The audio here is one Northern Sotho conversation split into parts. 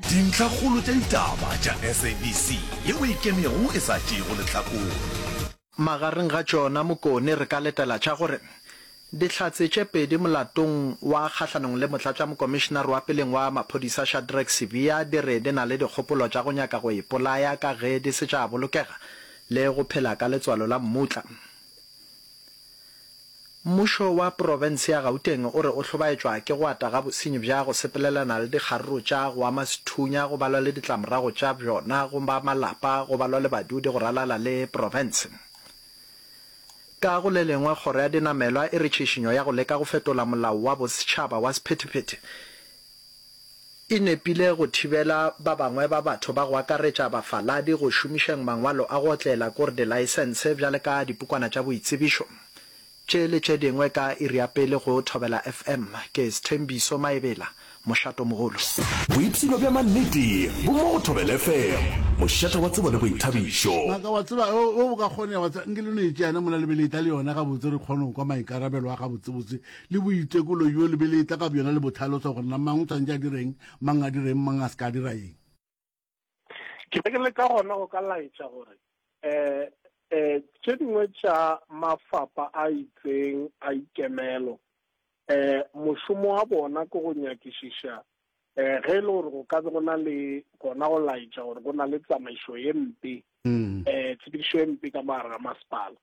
Dintlhakgolo tša ditaba tša SABC yeo e kennego e sa tšeego lehlakore. Magareng ga tšona Mokone re ka letela tša gore dihlatse tše pedi molatong wa kgahlanong le motlatšamokomišenare wa peleng wa maphodisa Shadrack Sibiya di re di na le dikgopolo tša go nyaka go ipolaya ka ge di se tša bolokega le go phela ka letswalo la mmutla. Mmušo wa profense ya Gauteng o re o hlobaetšwa ke go ata ga bosenyi bja go sepelelana le dikgaruru tša go ama sethunya go balwa le ditlamorago tša bjona go ba malapa go balwa le badudi go ralala le profense. Ka go le lengwe, kgoro ya dinamelwa e re tšhišinyo ya go leka go fetola molao wa bosetšhaba wa sephethephethe e nepile go thibela ba bangwe ba batho ba go akaretša bafaladi go šomišeng mangwalo a go otlela ko re dilaesense bjale ka dipukwana tša boitsebišo tše le tše dingwe ka iri ya pele go Thobela FM ke Sthembiso Maebela Mošatomogolo. Boipshino bja mannete bo mo go Thobela FM mošate wa tsebo le boithabišo. Ngaka, wa tseba, ge go ka kgonega, wa tseba, nke le no e tšea yena mola le be le e-tla le yona gabotse re kgone go kwa maikarabelo a gabotsebotse le boitekolo bjo le be le etla ka bjona le bo tlhalosa gore na mang o tshwanetse a direng, mang a direng, mang a se ka dira eng. Ke be ke leka gona go ka laetša gore um um tše dingwe tša mafapa a itseng a ikemelo um mošomo wa bona ke go nyakišiša um ge e le gore go ka be go na le gona go laetša gore go na le tsamaišo ye mpe um tshepedišo ye mpe ka mogare ga masepala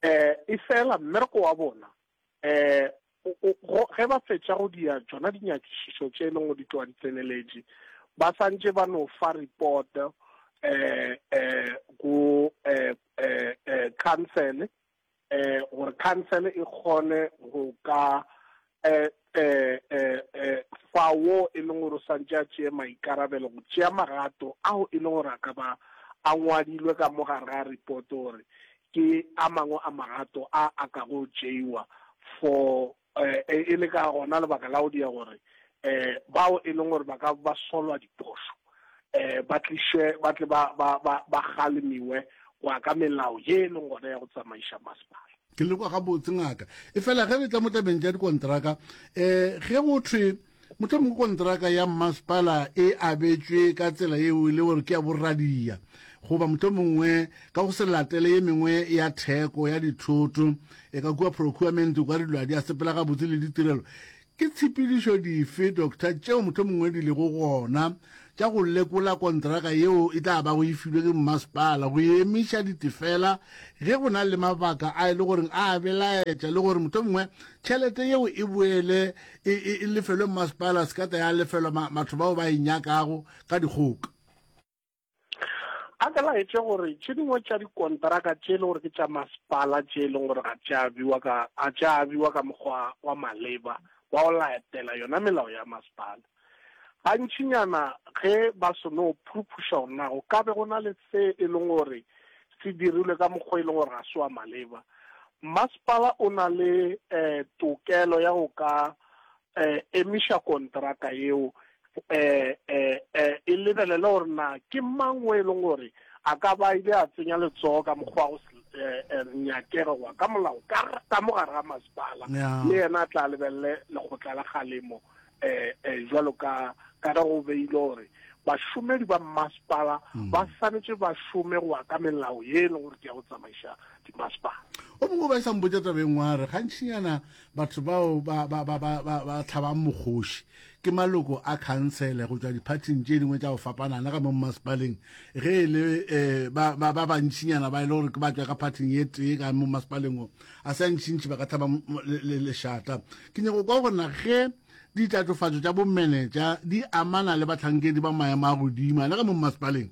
um efela mmereko wa bona um ge ba fetša go dia tšona dinyakišišo tše e leng go di tloga di tseneletše ba santše ba no fa report um um go um council um gore council e kgone go ka eh, eh, eh, eh, fa wo e leng gore o santse a tseye maikarabelo go tšea magato ao e leng gore a ka ba a ngwadilwe ka mo gare ga repoto gore ke a mangwe a magato a a ka go tšeiwa for eh, e le ka gona lebaka la go dia gore eh bao e leng gore ba ka ba solwa diphošo eh ba tliše ba tle ba ba ba ba kgalemiwe go ya ka melao ye e leng gona ya go tsamaiša masepala ke le kwa gabotse ngaka e fela ge re tla mo tabeng tša dikontraka um ge go thwe motho mongwe kontraka ya mmasepala e abetswe ka tsela eo e le gore ke ya borradia goba motho mongwe ka go se latele ye mengwe ya theko ya dithoto e ka kua procurement kwa dilo a di a sepela gabotse le ditirelo Ke tshepedišo dife, Doctor, tšeo mohlomongwe di lego gona tša go lekola kontraka yeo e tla bago e filwe ke mmasepala go emiša ditefela ge go na le mabaka a e le gore a a belaetša le gore mohlomongwe tšhelete yeo e boele e, e, e lefelwe mmasepala se ka tla ya lefelwa ma, batho bao ba e nyakago ka dikgoka? a ka laetše gore tše dingwe tša dikontraka tše e le gore ke tša masepala tše e leng gore ga tša abiwa ka a tša abiwa ka mokgwa wa maleba wa go laetela yona melao ya masepala gantšinyana ge ba seno phuruphuša gore na go ka be go na le se e leng gore se dirilwe ka mokgwa e leng gore ga se wa maleba masepala o na le um tokelo ya go ka eh, emiša kontraka yeo eh, eh, eh, e lebelele gore na ke mang o e leng gore a ka ba ile a tsenya letsogo ka mokgwa go eh, eh, nyakega goa ka molao ka mo gare ga masepala le yena a tla lebelele lekgotla la galemo um jalo ka ka ge go beile gore bašomedi ba mmasepala hmm. ba swanetse ba šome goa ka melao ye e leng gore ke ya go tsamaiša dimasepala o mongwe ba e sa mpotsa tabeng wa re gantšhinyana Batho bao ba, ba, ba, ba, ba, ba tlhabang mokgoši ke maloko a khansele go tšwa diphathing tše dingwe tša go fapanana ka mo mmasepaleng ge e le um ba, ba, ba bantšinyana ba e le gore ke ba tšwa ka phathing ye tee ka mo mmasepaleng o a se a ntšintši ba ka tlhaba lešata ke nyako kwa gore na ge ditatofatšo tša bomenetša di amana le batlhankedi ba maemo a godima le ka mo mmasepaleng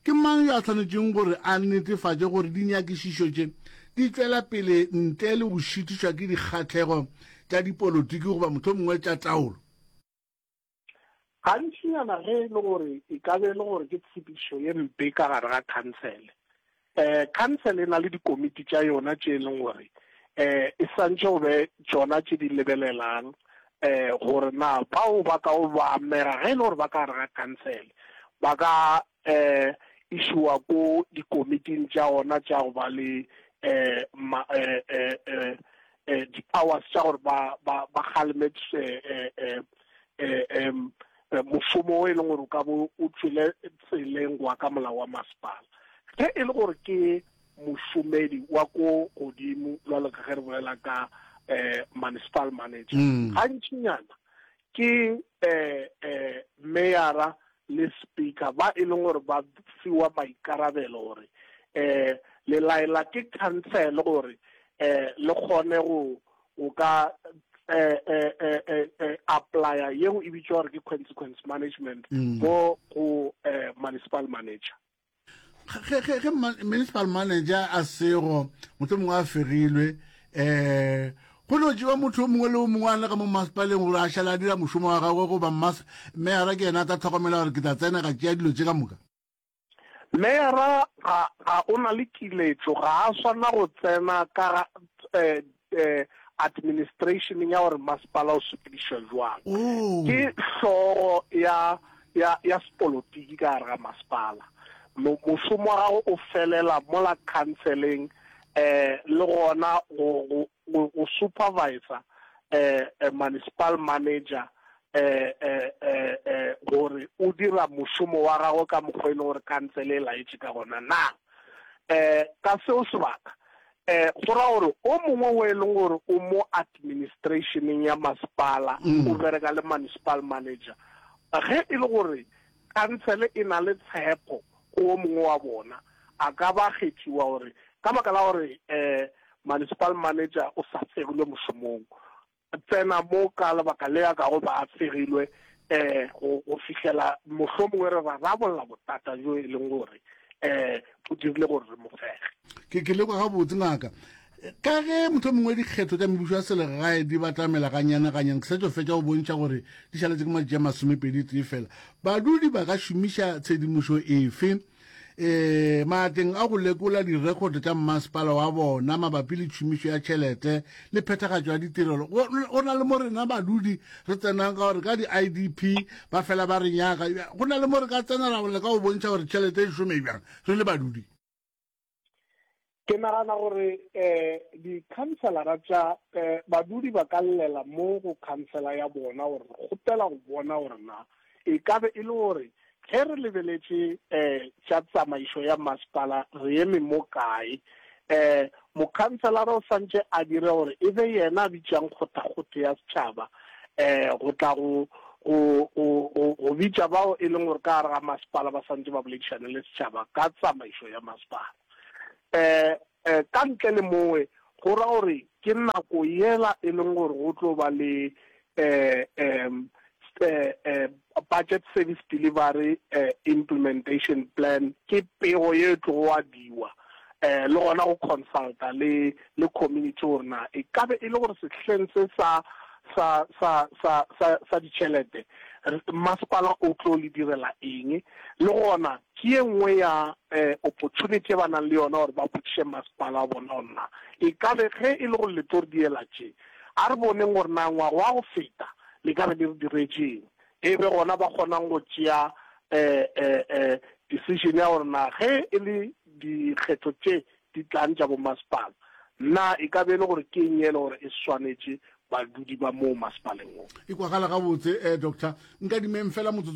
Ke mang yo a swanetšeng gore a netefatše gore dinyakišišo tše di tšwela pele ntle le go šitišwa ke dikgahlego tša dipolotiki goba mohlomongwe tša taolo? Gantšinyana ge e le gore e ka be e le gore ke tshepišo ye mpe ka gare ga khansele, Eh, khansele e na le dikomiti tša yona tše e leng gore eh, e santše go be tšona tše di lebelelang eh, gore na bao ba ka o ba amega ge e le gore ba ka gare ga khansele ba ka eh, išowa ko dikomiting tša gona tša go ba le eh, ma, eh, eh, eh, eh, di-powers tša gore ba, ba, ba kgaleme eh, eh, eh, eh, em, eh, mošomo o e leng gore o ka bo o tswile tseleng go ka molao wa masepala ge e le gore ke mošomedi wa ko godimo jwalo ka ge re bolela ka eh municipal manager mm. gantšinyana ke eh eh mayora le speaker ba e leng gore ba fiwa maikarabelo gore eh le laela ke council gore eh le kgone go o ka eh, eh, eh, eh, eh, applya yeo e bitšwa gore ke consequence management mm. go go eh, municipal manager ge ge ge municipal manager a sego motho mongwe a fegilwe eh go no jewa motho o mongwe le o mongwe a le ka mo masepaleng gore a šala a dira mošomo wa gagwe goba meyara ke yena a tla tlhokomela gore ke tla tsena ga tšea dilo tse ka moka Meyara ga, ga o na le kiletšo, ga a swanela go tsena ka ga, administration ya gore masepala o sepedišwa bjang. Ke hlogo ya, ya, ya sepolotiki ka gare ga masepala. Mo, mošomo wa gagwe o felela mola khanseleng, le gona go, go, Go, go supervisor eh, eh, municipal manager eh, eh, eh, eh, gore o dira mošomo wa gagwe ka mokgwa e leng gore kantsele e laetše ka gona na eh, ka seo sebaka eh go ra gore o mongwe o e leng gore o mo administrationeng ya masepala mm. o bereka le municipal manager ge e le gore Khansele e na le tshepo go o mongwe wa bona, a ka ba kgethiwa gore ka baka la gore Municipal Manager o sa tsegilwe mošomong, tsena mo ka lebaka le a kago ba a tsegilwe go fihlela mohlomongwe re rarabolla botata bjo e leng gore bo dirile gore re mo fege. Ke lekwa gabotse, Ngaka. ka ge motho mongwe dikgetho tša mebušo ya selegae di batamela ganyanaganyana ke sa tšo fetša go bontšha gore di šaletse ke matši a masomepedi tee fela badudi ba ka šomiša tshedimošo efe eh maateng a go lekola direkhoto tša mmasepala wa bona mabapi le tšhomišo ya tšhelete le phethagatšo ya ditirelo go na le mo rena badudi re tsenang ka gore ka di-idp ba fela ba re nyaka go na le mo re ka tsenela go leka go bontšha gore tšhelete e šome bjang re le badudi ke nagana gore um dikhanselara tša um badudi ba ka llela mo go khansela ya bona gore re kgopela go bona gore na e ka be e le gore ge re lebeletše um tša tsamaišo ya masepala re eme mo kae um mokhanselara o swantše a dire gore e be yena a bitšang kgothakgotho ya setšhaba um go tla go go go go go bitša bao e leng gore ka gare ga masepala ba santse ba boledišane le setšhaba ka tsamaišo ya masepala um um ka ntle le mowe go ra gore ke nako yela e leng gore go tlo ba le um um um Budget Service Delivery Implementation Plan ke pego ye e tlogo ngwadiwa le gona go consulta le le community gore na e ka be e le gore sehleng se sa sa sa sa sa sa ditšhelete masepala o tlo le direla eng le gona ke ye nngwe ya opportunity e ba nang le yona gore ba botšiše masepala wa bona gore na e ka be ge e le gore le tlo re diela tše a re boneng gore na ngwaga wa go feta le ka be le re diretšeng, e be gona ba kgonang go tšea decision ya gore na ge e le dikgetho tše di tlang tša bomasepala na e ka be e le gore ke eng e le gore e swanetše badudi ba moo masepaleng wo. E kwagala gabotse, Doctor. Nkadimeng feela motsotso.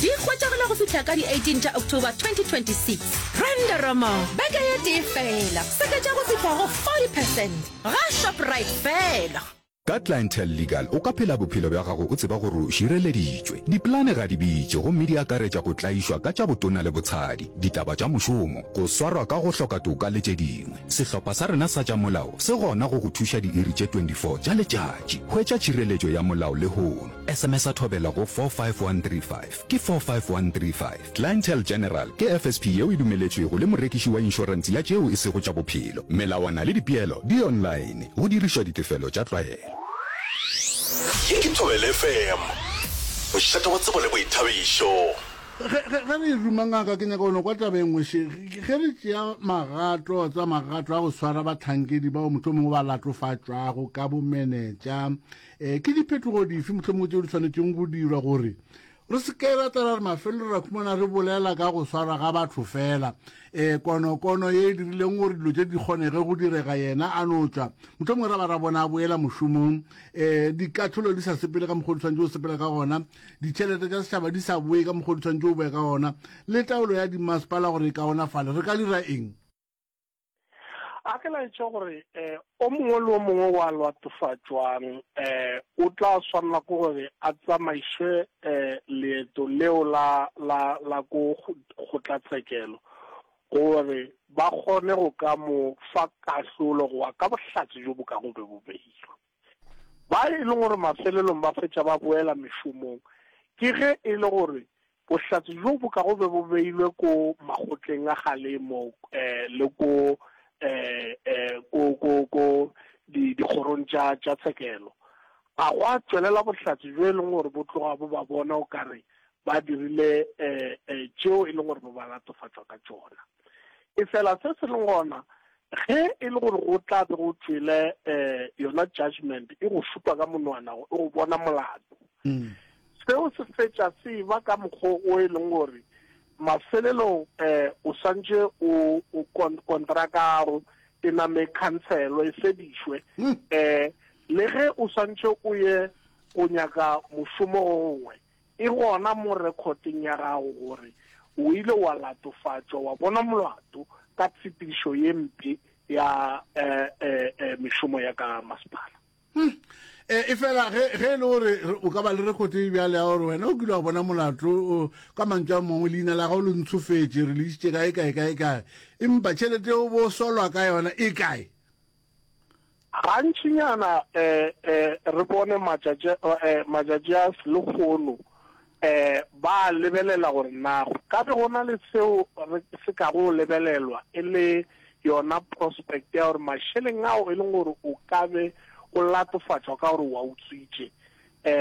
Di hwetšagala go fihla ka di 18 tša October 2026. Brenda Romo, beke ye tee fela, seketša go fihla go 40 percent ga Shoprite fela. Ka Clientele Legal o ka phela bophelo bja gago o tseba gore o šireleditšwe. Dipolane ga di bitše gomme di akaretša go tlaišwa ka tša botona le botshadi, ditaba tša mošomo, go swarwa ka go hloka toka le tše dingwe. Sehlopha sa rena sa tša molao se gona go go thuša diiri tše 24 tša letšatši. Hwetša tšhireletšo ya molao lehono. Sms-a thobela go 45135. Ke 45135. Clientele General ke FSP yeo e dumeletšwego le morekiši wa inšorense ya tšeo e sego tša bophelo. Melawana le dipeelo di online, go dirišwa ditefelo tša tlwaelo. Ye ke Thobela FM, mošate wa tsebo le boithabišo. Ge, ge, ge re e ruma, ngaka, ke nyaka go no kwa taba e nngwe še. Ge, ge re tšea magato, tsa magato a go swara bahlankedi bao mohlomongwe ba latofatšwago ka bomenetša, E, ke diphetogo dife mohlomong tse di tshwanetseng go dirwa gore re se ke ra tlala re mafelelo ra khumana re bolela ka go swara ga batho fela e konokono ye e dirileng gore dilo tse di kgonege go direga yena a no tswa motlhomongwe ra ba ra bona a boela mošomong um dikatlholo di sa sepele ka mokgwa o di tshwanetse o sepela ka gona ditšhelete tsa setšhaba di sa boe ka mokgwa o di tshwanetse o boe ka gona le taolo ya dimasepala gore e kaonafale re ka dira eng a ke laetša gore um o mongwe le o mongwe wa lwatofatšwang um o tla swanela ke gore a tsamaišwe um leeto leo la la la ko kgotlatshekelo gore ba kgone go ka mo fa kahlolo goa ka bohlatse jo bo kago be bo beilwe Ba e lego gore mafelelong ba fetša ba boela mešomong ke ge e le gore bohlatse bjo bo ka go be bo beilwe ko makgotleng a galemo le ko dikgorong tša tshekelo. A gwa tšwelela bohlatse bjo e lego gore bo tloga bo ba bona o ka re ba dirile tšeo e lego gore bo ba latofatšwa ka tšona? Efela se se lego gona, ge e le gore go tla be go tšwele um yona judgment e go šupa ka monwana gore e go bona molato, mm. seo se fetša se ba ka mokgwa o e leng gore mafelelong um o swantše o kontrakago e name khanselo e fedišwe um le ge o swantše o ye go nyaka mošomo gongwe E gona mo rekhoteng ya gago gore o ile wa latofatšwa wa bonwa molato ka tshepedišo ye mpe ya mešomo ya ka masepala. Efela ge e le gore o ka ba le rekhoto e bjalo ya gore wena o kile wa bona molato, ka mantšu a mangwe leina la gago le ntshofetše, re le išitše kae, kae, kae, kae, empa tšhelete yeo bo solwa ka yona e kae? Gantšinyana e, e, re bone matšatši, e, matšatši a selehono e, ba lebelela gore na go ka be go na le seo re se ka go lebelelwa e le yona prospect ya gore mašeleng ao e leng gore o ka be o latofatšwa ka gore wa utswitše e,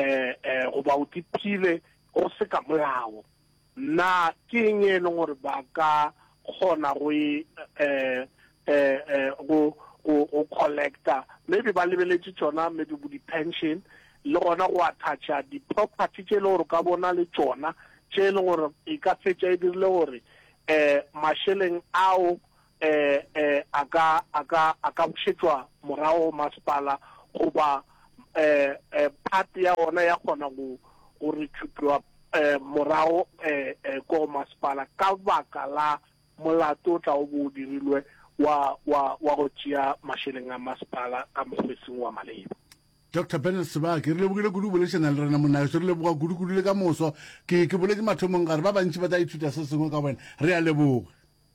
e, goba o tiphile go se ka molao. Na ke eng e leng gore ba ka kgona go e go go go collecta maybe ba lebeletše tšona maybe bo di pension le gona go attacka di property tše e le gore ka bona le tšona tše e leng gore e ka fetša e dirile gore eh masheleng ao eh, eh, a ka, a ka, a ka bušetšwa morago masepala goba eh, eh, part ya ona ya kgona go go re tšhutwa eh, morago eh, eh, ko masepala ka baka la molato o tla o bo o dirilwe wa wa wa go tšea mašeleng a masepala ka mokgwesing wa maleba dr benard sebake re lebogile kudu o bolešana le rena monageso re leboga kudukudu le ka moso ke ke boletse mathomong gare ba bantši ba tla ithuta se sengwe ka wena re a leboga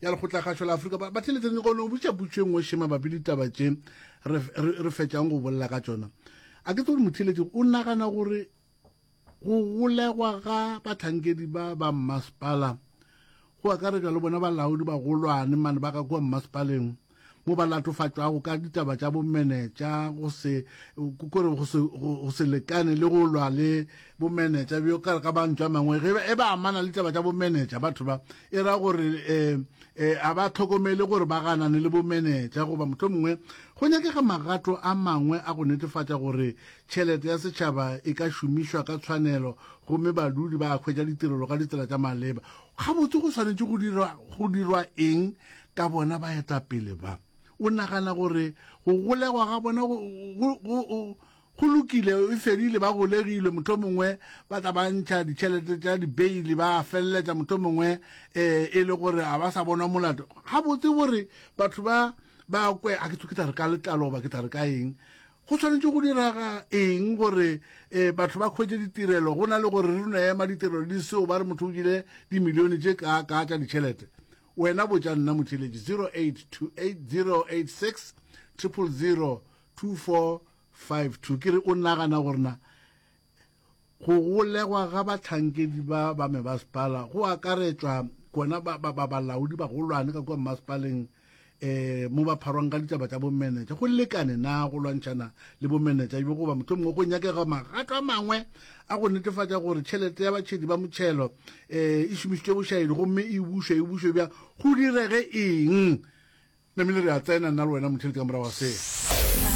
ya lekgotlakgašo la Afrika ba theletše go no botša putšo e nngwe še mabapi le ditaba tše re fetšang go bolela ka tšona a ke tse gore motheletši o nagana gore go golegwa ga batlhankedi ba ba mmasepala go akaretšwa le bona balaodi bagolwane mane ba ka kua mmasepaleng mo ba latofatšwago ka ditaba tša bomenetša go se kore go se lekane le go lwa le bomenetša bjo ka re ka mantšwa a mangwe ge e ba amana le ditaba tša bomenetša batho ba e ra gore um eh, um eh, a ba tlhokomele gore ba ganane le bomenetša goba motlho mongwe go nyakega magato a mangwe a go netefatša gore tšhelete ya setšhaba e ka šomišwa ka tshwanelo gomme badudi ba hwetša ditirelo ka ditsela tša maleba gabotse go swanetše go dirwa eng ka bona baetapele ba, o nagana gore go golegwa ga bona go, go, go, go, go lokile, e fedile, ba golegilwe, motho mongwe ba tla ba ntšha ditšhelete tša dibeili, ba feleletša motho mongwe um e le gore a ba sa bonwa molato. Gabotse gore batho ba ba kwe, a ke tla re ka letlalo goba ke tla re ka eng, go tshwanetse go diraga eng gore um batho ba kgwetse ditirelo go na le gore re no ema ditirelo di seo ba re motho o jile dimilione tše kaa kaa tša ditšhelete Wena botša nna motšweletši 0828-086-002452. Ke re o nagana gore na go golegwa ga bahlankedi ba ba mebaspala go akaretšwa kona ba ba ba balaodi ba golwane ka kwa mmasepaleng eh mo ba pharwang ka ditaba tša bomenetša go lekane na go lwantšhana le bomenetša bjo goba mohlomongwe go nyakega magato a mangwe a go netefatša gore tšhelete ya batšhedi ba motšhelo e e šomišitšwe bošaedi gomme e bušwe e bušwe bja go direge eng namile re a tsena nna le wena mothelete ka morago ga seo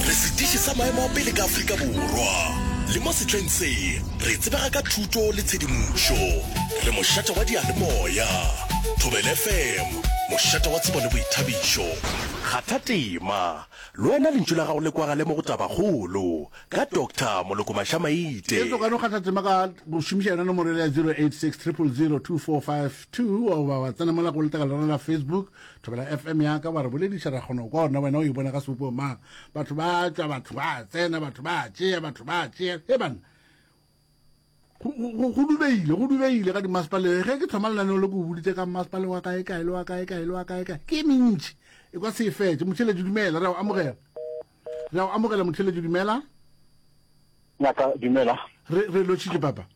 re sediši sa maemo a pele ka afrika borwa le mo setleng se re tsebega ka thuto le tshedimošo re mošate wa dialemoya thobel fm mošate wa tsebo le boithabišo kgatha tema le wena lentšu la gago le kwagale mo go tabakgolo Ka Doctor Moloko Maša-maite. Etso ka no kgatha tema ka go šomiša yona nomoro ele ya 0860002452 goba wa tsena mola go letaka la rona la Facebook Thobela FM ya ka wa re bolediša ra kgona go kwa ona wena o e bona ka sebopego mang batho ba tšwa batho ba tsena batho ba tšea batho ba tšea he banna go dubegile go dubegile ka dimasepaleng ge ke thoma lenaneo le ko boditse ka mmasepale wa kae kae le wa kae kae le wa kae kae ke e mentši e kwa se e fetse motheletši dumela re a go amogela re a go amogela motheletši dumela ngaka dumela re re lotšhitše papa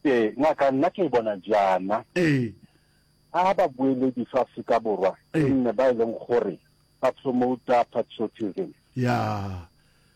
ee ngaka nna ke e bona jaana ee a ba boeledi fa Afrika Borwa nne ba e leng gore ba promota patriotism ya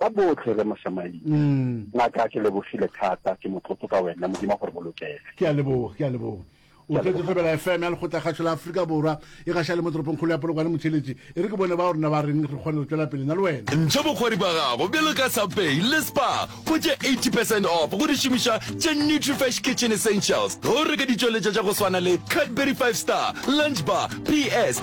Ka bohle Rre Moshamaile. Ngaka ke lebogile thata, ke motlotlo ka wena, Modimo a go re bolokele. Ke a leboga, ke a leboga. O tlotse Thobela FM ya Lekgotlakgašo la Afrika Borwa e gaša le mo toropongkgolo ya Polokwane Motšheletši. E re ke bone bao rena ba reng re kgone go tšwela pele na le wena. Ntšha bokgwari bja gago bjalo ka Subway le Spar go tše 80 percent off go di šomiša tše Nutrifresh Kitchen Essentials ge o reka ditšweletša tša go swana le Cadbury Five Star, Lunch Bar, PS,